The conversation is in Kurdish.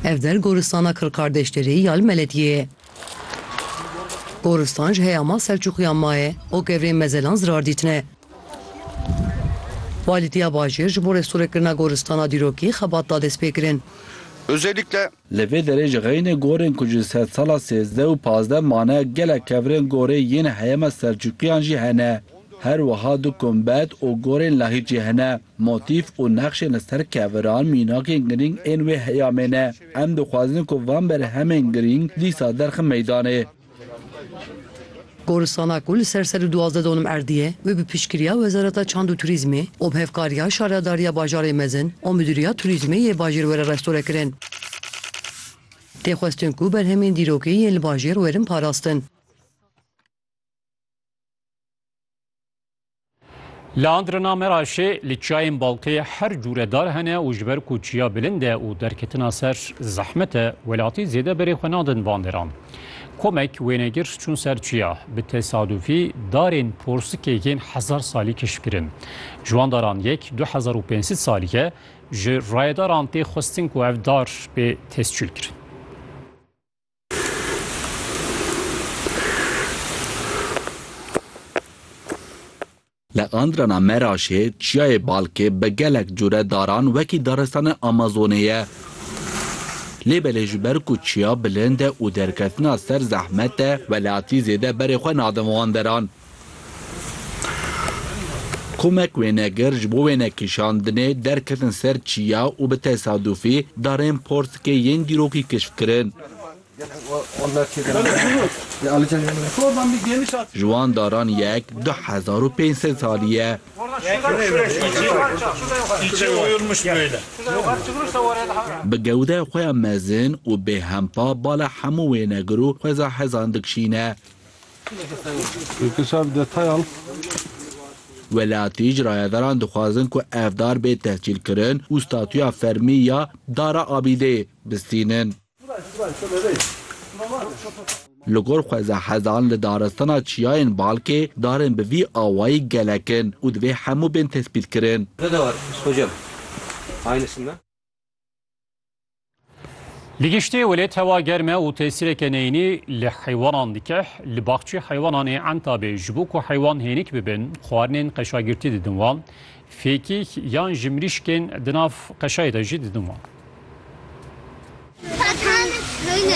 Ev der goristana Kirkardeşderê ya li Meletiyê ye. Goristan ji heyama Selçûkiyan maye û gevrên mezelan zirar dîtine. Walîtiya bajêr ji bo restore-kirina goristana dîrokî xebat da destpêkirin. Özellikle. Li vê derê ji xeynê gorên ku ji sedsala sêzdeh û pazdeh mane gelek kevirên gorê yên heyama Selçûkiyan jî hene. Her wiha du kumbet û gorên lahîtjî hene. Motîf û nexşên li ser keviran mînakên girîng ên wê heyamê ne. Em dixwazin ku van berhemên girîng dîsa derxin meydanê. Goristana ku li ser sed û duwazdeh donim erdî ye, wê bi piştgiriya Wezareta Çand û Turîzmê û bi hevkariya Şaredariya Bajarê Mezin û Midûriya Turîzmê yê bajêr were restore kirin. Tê xwestin ku berhemên dîrokî yên li bajêr werin parastin. Li Andrina Meraşê li çiyayên Baltê her cûre dar hene û ji ber ku çiya bilind e û derketina ser zehmet e, welatî zêde berê xwe nadin van deran. Komek wênegir çûn ser çiya, bi tesadûfî darên porsikê yên hezar salî keşfkirin. Ji wan daran yek du hezar û pênc sed salî ye, ji rayedaran tê xwestin ku ev dar bê tescîlkirin. Li Andrana Meraşê çiyayê Balkê bi gelek cure daran wekî daristana Amazonê ye. Lê belê ji ber ku çiya bilind e û derketina ser zehmet e, welatî zêde berê xwe nadin van deran. Komek wênegir ji bo wênekişandinê derketin ser çiya û bi tesadufî darên portikê yên dîrokî kişf kirin. Ji wan daran yek du hezar û pênc sed salî ye. Bi gewdeya xwe ya mezin û bêhempa bala hemû wênegir û xweza hezan dikişîne. Welatî ji rayedaran dixwazin ku ev dar bê tehcîlkirin û statuya fermî ya Dara Abîdeyê bistînin. Li gor xweza hezan li daristana Çiyayên Balkê darên bi vî awayî gelek in û divê hemû bên tespîtkirin. Li giştî welêt hewa germ e û tesîreke neyînî li heywanan dike. Li baxçê heywanan ê Entabê ji bo ku heywan hênik bibin, xwarinên qeşagirtî didin wan. Fêkîk yan ji mirîşkên di nav qeşayê de jî didin wan.